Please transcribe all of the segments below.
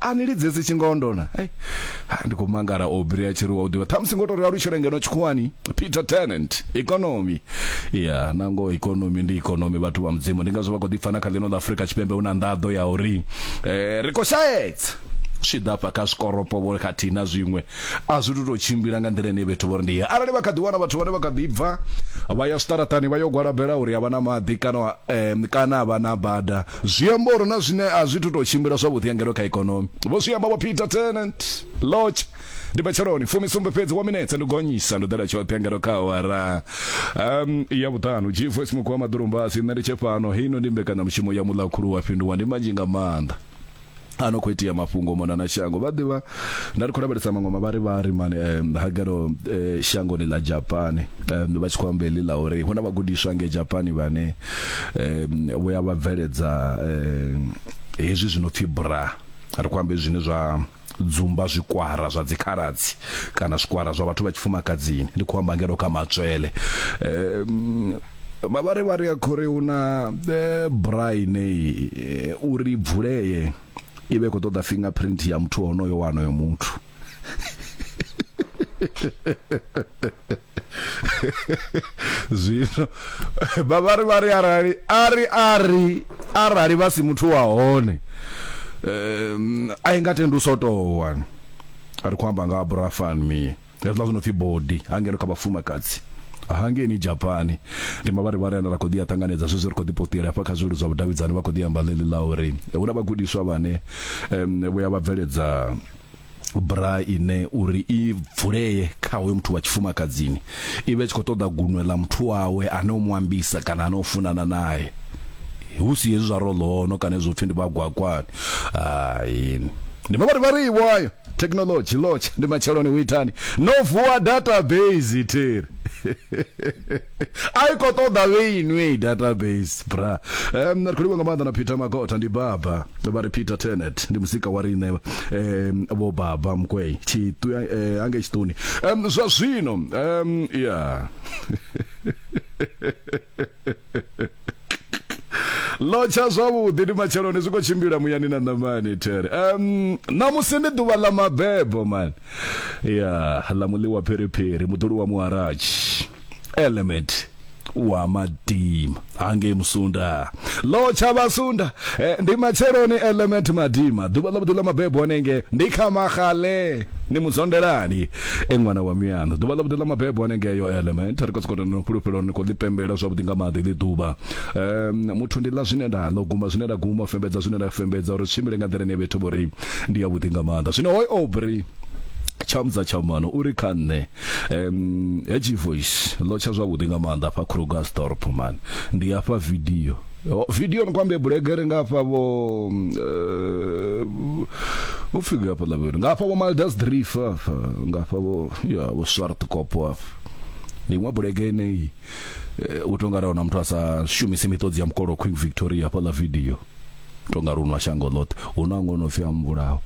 a ni lidzedzi tshingondo na hey. ndi khou mangala obri a tshi ri wa u ḓivha ṱhamusi ngo tou ri alutshele ngeno tshikhuwani peter tenant ikonomi ya yeah, nango ikonomi ndi ikonomi vhathu vha mudzimu ndi ngazwo vha khou ḓipfa na kha ḽino ḽa afurika tshipembe hu na nḓaḓo ya uri eh, ri khou shaedza zwi ḓa fha kha zwikoropo vho khathihi na zwiṅwe a zwi tu tou tshimbila nga nḓila ine vhethu vho ri ndi arali vha kha ḓi wana vhathu vhane vha kha ḓi bva vha ya zwiṱaraṱani vha yo gwalabela uri a vha na maḓi kana um kana a vha na bada Zwi amba uri na zwine a zwi thu tou tshimbila zwavhuḓi ya ngeno kha ikonomi, vho zwi amba Vho Peter Tennant. Lorch, Ndi matsheloni fumi sumbe fhedzi wa minetse ndi gonyisa ndi ḓela tshoṱhe ya ngeno kha awara um, ya vhuṱanu. G-Voice Mukhwa Maḓulumbasi, Nṋe ndi tshe fhano, heino ndi mbekanyamushumo ya Muḽakhulu wa Fhinduwa, ndi manzhi nga maanḓa. a no khou itea mafhungo mona na shango vha ḓivha nda ri khou lavhelesa maṅwe mavhari vha ri mani um, hagero eh, shangoni ḽa japani um, vha tshi khou amba heḽi ḽa uri hu na vhagudiswa nge japani vhane um, vho ya vha bveledza um, hezwi zwi no pfi bra ri khou ambe zwine zwa dzumba zwikwara zwa dzikhaladzi kana zwikwara zwa vhathu vha tshifumakadzini ndi khou amba ngeno kha matswele um, Mavharivhari a khou ri hu na braai nei uri bvulee i vhe khou ṱoḓa fingerprint ya muthu honoyo wa honoyo muthu zwino vhavhari vha ri arali ari ari arali vha si muthu wa hone um, a i nga tendi u sotowa ri khou amba nga ha brafan mie hezwiḽa zwi no pfi body hangeno kha vhafumakadzi hangeini Japan ndi mavharivhari ane ra khou ḓi a ṱanganedza zwezwi ri khou ḓi potela hafha kha zwileludzi zwa vhudavhidzani vha khou ḓi amba ḽeḽi ḽa uri hu na vhagudiswa vhane um vho ya vha bveledza bra ine uri i vulee kha hoyo muthu wa tshifumakadzini i vhe tshi khou ṱoḓa gunwe ḽa muthu wawe ane u mu ambisa kana ane u funana naye hu si hezwi zwa rolono kana hezwo pfhi ndi vhagwakwani hai ndi mavharivhari iwayo Technology lodge ndi matsheloni hu itani no vuwa database theri a i khou ṱoḓa vhe inwi database bra um, ri khou livha nga maanḓa na peter makota ndi baba vha ri peter tenet ndi musika wa riṋe um, vho baba mkwei tshiṱu eh, ange tshiṱuni um, zwa zwino um, ya yeah. lotsha zwavhuḓi ndi matsheloni zwi khou tshimbila muyani na ṋamani there um ṋamusi ndi ḓuvha ḽa mabebo mani ya ḽa muḽiwa phiriphiri muḓuli wa muharatshi element wa madima hangei musunda lo tsha vhasunda eh, ndi matsheloni element madima ḓuvha ḽa vhuḓi ḽa mabebo hanenge ndi kha magale ni muzondelani e ṅwana wa miano ḓuvha ḽa vhuḓi ḽa mabebo hanengeyo element ri khou sokou no fhulufhelo ni khou ḽi pembela zwavhuḓi nga maḓi ḽi ḓuvha um muthu ndi ḽa zwine nda ḽo guma zwine nda guma fembedza zwine nda fembedza uri tshimbile nga nḓila ine vhethu vho ri ndi ya vhuḓi nga maanḓa zwino hoy obri tshamza tshamano uri kha nṋe um hedzi voice ḽo tsha zwavhuḓi nga maanḓa afha krugersdorp man ndi afha video Yo, video ni kwambe bulegere nga hafha vho vho fika hafha la vhona nga hafha vho Maldas Drief hafha nga hafha vho ya vho Swart Kopo hafha ni nwa bulege ne u tonga ra ona muthu asa shumisi miṱodzi ya mukolo Queen Victoria hafha la video tonga ri unwa shango ḽoṱhe hu na ngono fi amvulaho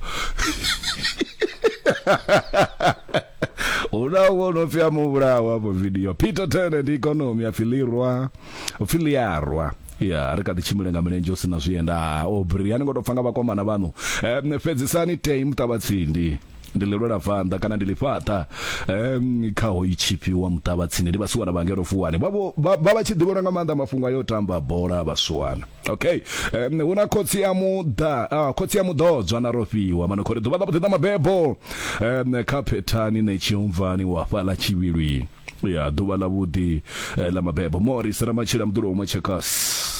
hu na ngono fi amvulaho hafho video Peter Turner ndi economy afilirwa upfi liarwa ya ri kha ḓi tshimbile nga milenzhe u sina zwienda obri ani ngo to pfa nga vhakomana vhanu um, fhedzisani tei muṱavhatsindi ndi ḽi lwela vanḓa kana ndi ḽifhaṱa um kha ho itshipfi wa muṱavha tsini ndi vhasiwana vha ngelo fuwani vha vha tshi ḓivhelwa nga maanḓa mafhungo ayo tamba bola vhasiwana okay um hu na khotsi ya muḓa ah, khotsi ya muḓodzwa na rofhiwa mano khori ḓuvha ḽa vhuḓi ḽa mabebo um kha phethani ne tshiumvani wa fhaḽa tshivhilwini ya ḓuvha ḽa vhuḓi eh, ḽa mabebo morris ramatshila muḓulo umwe checkers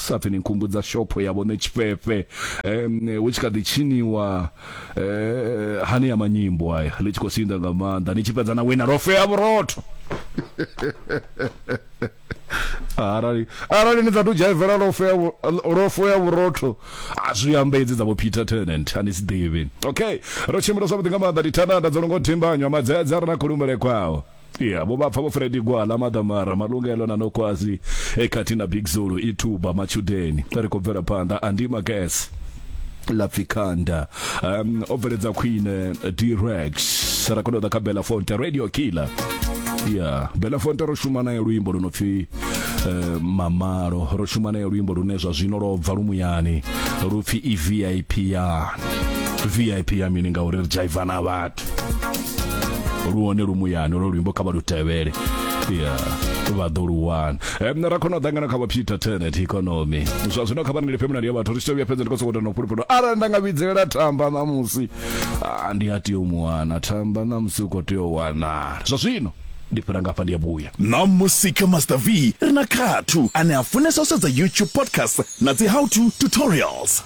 sa pfhi ni nkhumbudza shopho ya vhone tshifhefe um hu tshi kha ḓi tshiniwa eh, hani ya manyimbo aya ḽi tshi khou sinda nga maanḓa ni tshi fhedza na wina lofea vhurotho arali arali ni satu dzhaivela lofea lofo ya vhurotho a zwi amba edzi dza vho Peter Tennant ani si ḓivhi okay ro tshimbila zwavhuḓi nga maanḓa ndi thanada dzo longo thimbanywa madzedza rina khulumbele kwawo Yeah, vho vha pfa vho Freddy Gwala Madamara Malungelo na Nokwazi ekhathi na Big Zulu ithuba matshudeni ri khou bvela phanḓa andima gas lapfikanda um o bveledza khwine Direx ra khou ḓa kha Bella Fonte Radio Killer yeah Bella Fonte ro shuma naye luimbo lu no pfi uh, mamalo ro shuma naye luimbo lune zwa zwino lwo bva lumuyani lu pfi i VIP ya VIP ya mini ngauri ri dzhaiva na vhathu lu hone lu muyani lwo luimbo kha vha lu tevhele ya vha ḓo lu wana um, ra khona u ḓangana kha vha peter tenet economy zwa zwino kha vhaneli femina ya vhathu ri tshi vhuya fhedza ndi khou sokou tenda fhulufhelo arali nda nga vhidzelela thamba ṋamusi ah, ndi a tea u mu wana thamba ṋamusi u khou tea u wanala zwa zwino ndi fhira ngafha ndi ya vhuya na musika master v ri na khathu ane a funesa u sedza youtube podcast na dzi how to tutorials